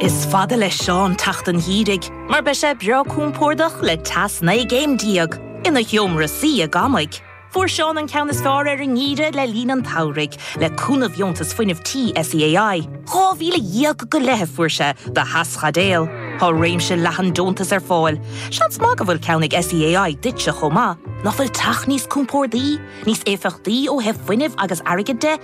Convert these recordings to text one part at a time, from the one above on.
Is fada le Seán teacht an gheimhridh mar beidh sé breá compordach le teas 19 gcéim ina sheomra suí i gcónaí. Fuair Seán an ceann is fearr ar an ngeimhreadh le linn an tsamhraidh le cúnamh dheontas fuinnimh tí SEAI. 12,000 go leith a fuair sé do theaschaidéal. Tá réimse leathan deontas ar fáil. Seans maith go bhfuil ceann ag SEAI duitse chomh maith. Nach bhfuil teach níos compordaí, níos éifeachtaí ó thaobh fuinnimh agus airgid de?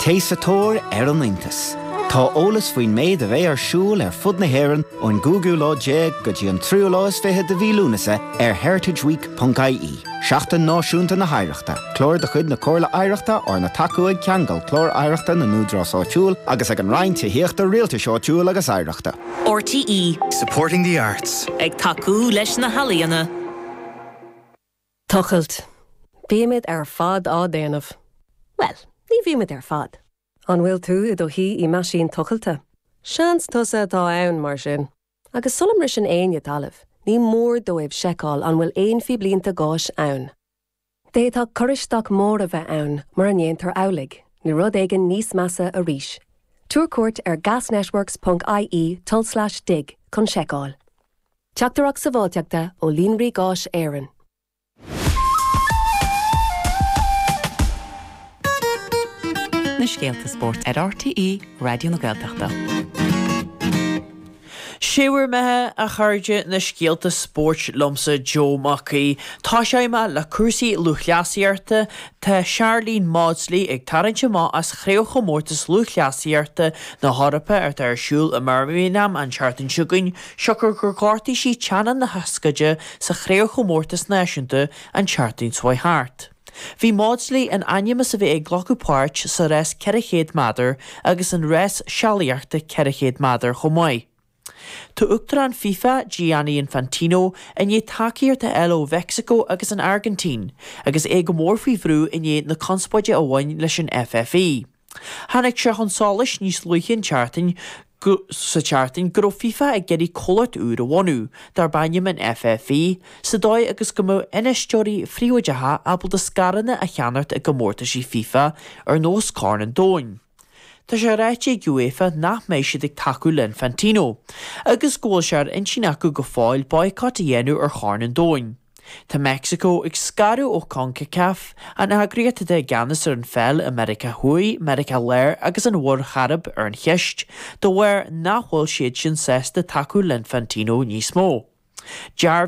Téigh sa tóir ar an iontas. Tá eolas faoin méid a bheidh ar siúl ar fud na hÉireann ón gcúigiú lá déag go dtí an tríú lá is fiche de mhí Lúnasa ar heritageweek.ie. Seachtain Náisiúnta na hOidhreachta, Clár de chuid na Comhairle Oidhreachta arna tacú ag Ceangal, Clár Oidhreachta na nÚdarás Áitiúil agus ag an Roinn Tithíochta, Rialtais Áitiúil agus Oidhreachta. RTÉ. Supporting the arts. Ag tacú leis na healaíona. Tochailt, Bímid ar fad á déanamh. Bhuel, ní bhímid ar fad. An bhfuil tú i do shuí i meaisín tochailte? Seans tusa atá ann, mar sin. Agus sula mbriseann éinne talamh, ní mór dóibh seiceáil an bhfuil aon phíblínte gáis ann. D'fhéadfadh cur isteach mór a bheith ann mura ndéantar amhlaidh, nó rud éigin níos measa arís. Tabhair cuairt ar gasnetworks.ie tulslais dig chun seiceáil. Teachtaireacht Sábháilteachta ó Líonraí Gáis Éireann. na scéalta spóirt ar RTÉ Raidió na Gaeltachta. Sé bhur mbeatha, a chairde, na scéalta spóirt liomsa Joe Mac Aoidh. Tosóidh muid le cúrsaí lúthchleasaíochta. Tá Sharlene Mawdsley ag tarraingt amach as Craobhchomórtas Lúthchleasaíochta na hEorpa atá ar siúl i mBirmingham an tseachtain seo chugainn. siocair gur ghortaigh sí teannán na hioscaide sa chraobhchomórtas náisiúnta an tseachtain seo thart. Bhí Mawdsley in ainm is a bheith ag glacadh páirt sa rás 400 meadar agus an rás sealaíochta 400 meadar chomh maith. Tá Uachtarán FIFA, Gianni Infantino, i ndiaidh tacaíocht a fháil ó Mheicsiceo agus an Airgintín, agus é go mór faoi bhrú i ndiaidh na conspóide a bhain leis an FFE. Tháinig sé chun solais níos luaithe an tseachtain go, sa tseachtain, go raibh FIFA ag iarraidh comhlacht úr a bhunú, darb ainm an FFE, sa dóigh agus go mbeadh infheisteoirí príobháideacha ábalta scaireanna a cheannacht i gcomórtaisí FIFA ar nós Corn an Domhain. Tá sé ráite ag UEFA nach mbeidh siad ag tacú le Infantino, agus go bhfuil sé ar intinn acu go fóill boycott a dhéanamh ar Chorn an Domhain. Tá Meicsiceo ag scaradh ó Concacaf, an eagraíocht atá i gceannas ar an pheil i Meiriceá Thuaidh, Meiriceá Láir agus an Mhuir Chairib ar an cheist de bharr nach bhfuil siad sin sásta tacú le Infantino níos mó.